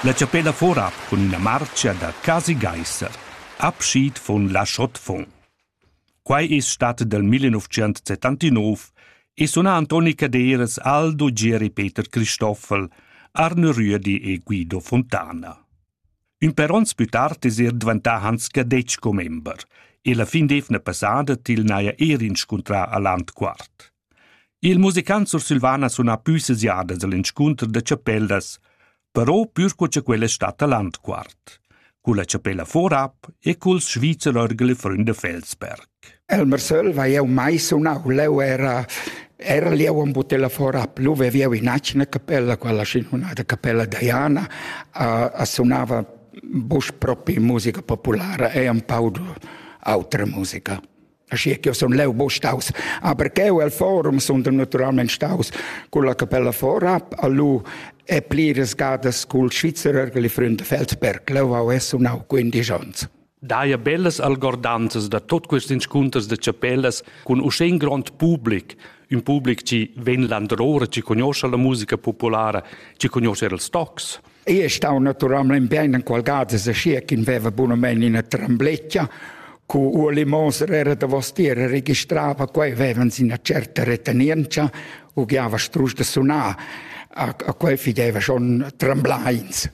La chapella forab cun ina marcia da quasi gaisser, abschied von la Schottfon. Quai es stat dal 1979 e suna Antoni Caderas, Aldo, Gieri Peter Cristoffel, Arne Rüedi e Guido Fontana. Ün per ons plü tard es er dvantà Hans Cadetsch commember e la fin d'eivna passada til n'haja er inscuntrà a Landquart. Il musicant sursilvan ha sunà pü seziadas al inscunter da chapellas, però pür co cha quella es statta Landquart, culla chapella Vorab e culs Schweizer Orgel e Fründe Felsberg. Elmer Söll va eu mai sunau, leu era era lieu un butella fora plus veviu in acina capella quella sinunata capella Diana a, a sunava bus propi musica populara e un pau autra musica. Aschia che sun leu buca staus, aber cheu el forum sun naturalmein staus con la capella Vorab a lu e pliras gadas cul Svizzerer che li Freund Feldberg. Leu hau es sunau 15 ons. Daia bellas algordanzas da tot quest inscunters de chapellas cun uschè in grond public, un public ci ven landrore, ci conosce la musica populara, ci conosce il stocs. Ei ei stau naturalmein bein enqual gada aschia ch'in veva bunamein ina trembletgia. Cu Ueli Moser era davostier e registrava quei, vevans ina certa retenientscha, ugliava strusch da sunar. A, a quei fideva schon tremblains.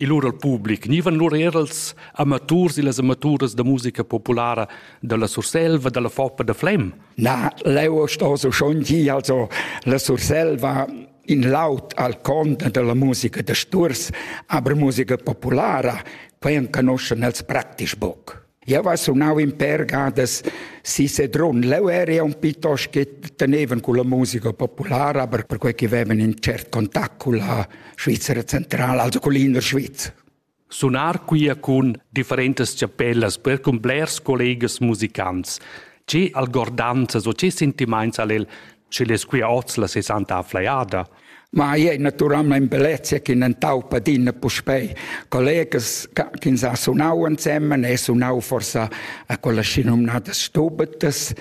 Il lur al public gnivan lur er als amaturs e las amaturas da musica populara dalla Surselva, dalla Foppa da Flem. Na, leu sto so schon gi, also la Surselva in laud al conda dalla musica da sturs, aber musica populara, quei enconoschen els praktisch boc. Eu va sunau in per gadas si Sedrun. Leu eri un piuttosto che tenevan con la musica populara, aber per quei che avevan in cert contact con la Svizzera centrale, also con l'inner Sviz. Sunar quia cun differentas chapellas per cun blers collegas musicants. Che algordanzas o che sentimaints ha'l el, schi'l es quia hoz la sesanta afflajada? Ma i è naturalmain bellezia ch'in entaupa adina puspei collegas che sa sunau ensemen e sunau forsa a quella schinomnada stubetas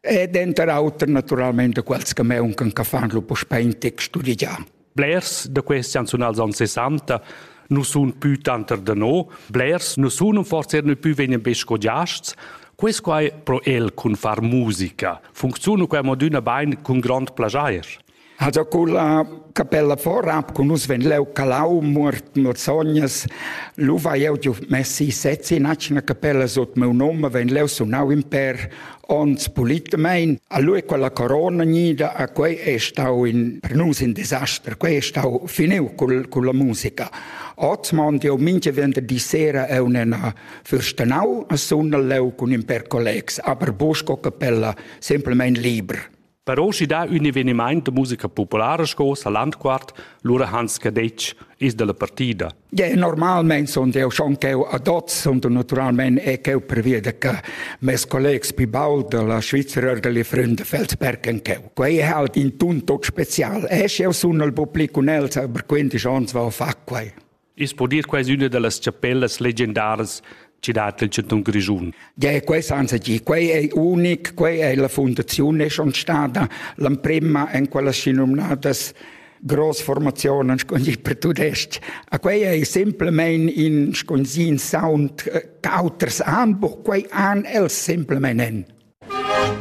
e denter auter naturalmein da quels che meuncan che fan lu puspei in tec studigiar. Blers da questi chanzunals anni 60 non sun più tanter da no, blers non sun forse erano più vegnan be scodiasts, Quest quai pro el cun far musica funcziuna quai modüna bain cun grond plajair. Also con la capella Vorab con us ven leu Calau muort Morzognas lu vai eu giu messi sezzi in acina capella sut meu nome ven leu sunau in per Ons pulitamein a lui quella corona gnida a quei è stau in per nus in disaster, quei è stau finiu col, con la musica. Oz mond io minche vender di sera è unena fürstenau a sunna leu cun in per collegs, aber busco capella semplicemente liber. Per oschi dà ün evenimaint da musica populara sco sa Landquart, lura Hans Cadetsch is dalla partida. Ja, normalmein sun eu schon ch'eu ad hoz sun naturalmein e ch'eu preveda che mes collegs più baul dalla Svizra orgeli Freunde Feldsberg en cheu. Quei è halt in tun tot special. E sch'eu sun al public cun els, aber quindi schons val fa quai. I's po dir quai üna da las chapellas legendaras chi dat il chantun Grischun. Ja, quai senza dir, quai è unic, quai è la fundazione è schon stata l'emprima in quella si nominadas Großformationen per tudest. A quei ei simplemente in sconsin sound eh, auters anbuch, quei an els simplemente en.